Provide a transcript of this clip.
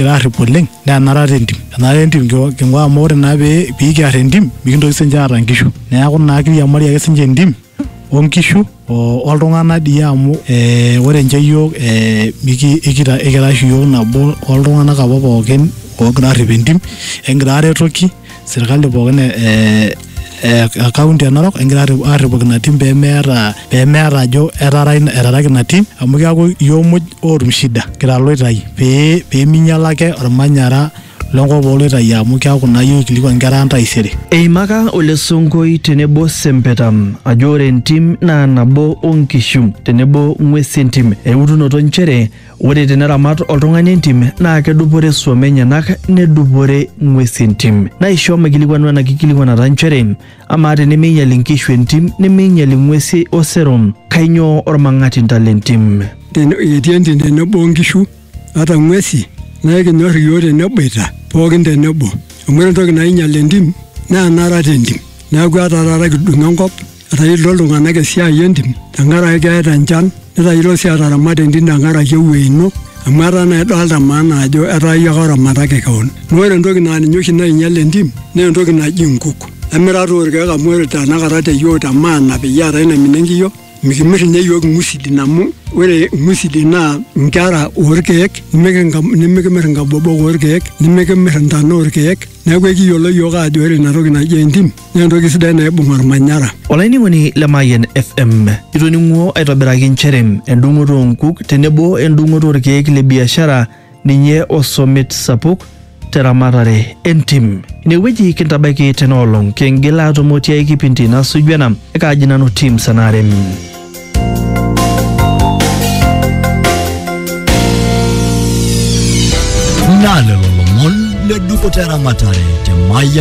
kigira arrip oleng naa enara te ntim enara te ntim king'ua- king'ua amu ore naa pee pikiar entim mikintoki sinche aata nkishu neeku naa kiriamari ake sinche entim onkishu o- oltung'anak dii amu eh, ore inche yiok eh, miki ikita ikira oshi yiok nabo oltung'anak apa pookin ogira arrip entim ekingira aretoki. sirkali pookin e- e- e- e kaunti e Narok egira arri- arripoki ina tim pemeeta pemeeta ajo etara ina- etaraki ina tim amu keaku iyiok muj ootum shida kira loitai pee peminyiala ake ormanyara lenkop oloitai amu keaku naa iyiok ikilikua nkera ang taisere Eimaka Ole Sonkoi tenebo Sempeta ajo ore entim naa nabo o nkishu tenebo ng'wesi entim eutunoto nchere Ore teneramat oltung'ani entim naa kedupore suom enyenak nedupore ng'wesi entim. Naisho maikilikwanu ena kikilikuanata nchere, amaa tenemeinyal inkishu entim nemeinyal ing'wesi osero, kainyoo olmang'atinta le ntim? Ten, etii entim tenebo nkishu ata ng'wesi naa ekinyor iyiook teneboita pookin tenebo. Amu ore entoki nainyal entim naa enarat entim. Neaku ata taata kidung enkop Etayiolito iltung'anak esiai entim tenkaraki keeta enchan netayiolo sii ataramat entim tenkaraki ewuei ino amu etaa naa idolta maana ajo etaa iyie ake oramataki kewon. Naa ore entoki naa ninye oshi nainyal entim naa entoki naji nkuk. Emira toi irkeek amu ore tenakata te yiok te maana peyie eetai naimina enkiyo mikimir inye iyiok irng'usilin amu ore irng'usilin naa inkera orkeek nemikink nemikimir inkabobok orkeek, nemikimir intana orkeek, neeku ekiyiolo iyiok aajo ore ina toki naji entim naa entoki sidai naibung olmanyara. Olainining'oni le Mayian FM, itoning'uo aitobiraki nchere endung'oto oo nkuk tenebo endung'oto olkeek le biashara ninye osomit sapuk te ramatare e ntim. Ine wueji kintabaiki tena olong, kingil aatumo tiai kipindi nasuju ena. Ekaaji nanu Tim Sanarem. Naa lelo lomon le dupoto e ramatare te Mayian